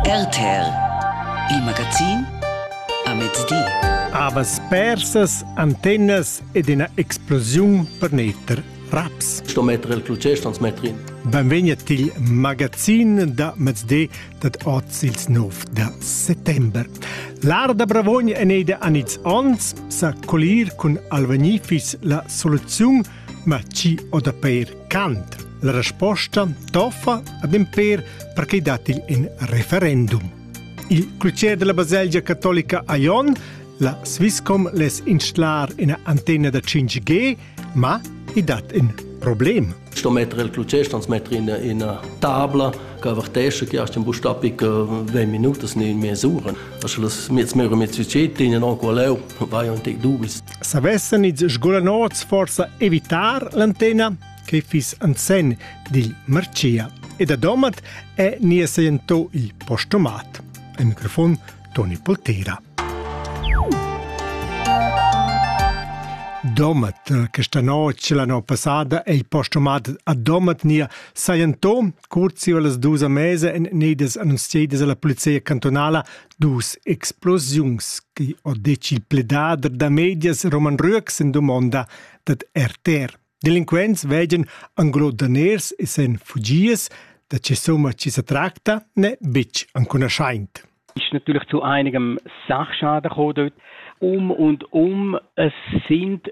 RTL, il magazin a mezdi. Avas persas, antennas ed ina explosiun per netter raps. Sto metter il clutger, stans metter in. Benvegni til magazin da mezdi dat oz ils 9 da settember. L'Arda Bravogn è neida an ils ons sa colir cun Alvanifis la soluziun Ma chi ho da peir cant? La resposta toffa ad ün pêr per chi dat il in referendum. Il clocher della baselgia catolica a Jon La Swisscom les instalar ina antenna da 5G, ma i dat in problem. Sto mettere il clocher, transmettere in una tabla che avvertesce che aus dem Bustapic äh, Minuten in mesura. Also das mit mehr und mit Budget in auch leu war ja ein Tick dubels. savessan ils sgolanots forsa evitar l'antena che fiss en sen dil Marcia e da Domat è ni sento il postomat. Al microfon Toni Poltera. Domat, questa notte l'anno passata, è il postomat a Domat nia Sajanto, curzi las dus a mese en nedes annunziadas alla polizia cantonala Dus explosiuns chi ho detg il pledader da medias Roman Rüeck sin dumonda dad RTR. Delinquents veggan anglo daners e sen fugias, da che somma chi se tracta ne bitg ancunaschaint. Ist natürlich zu einigem Sachschaden gekommen dort. Um und um, es sind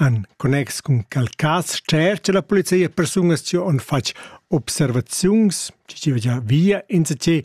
En connex cun quel cas tschercha la polizia persungas che han fatg observaziuns, che via insatge ni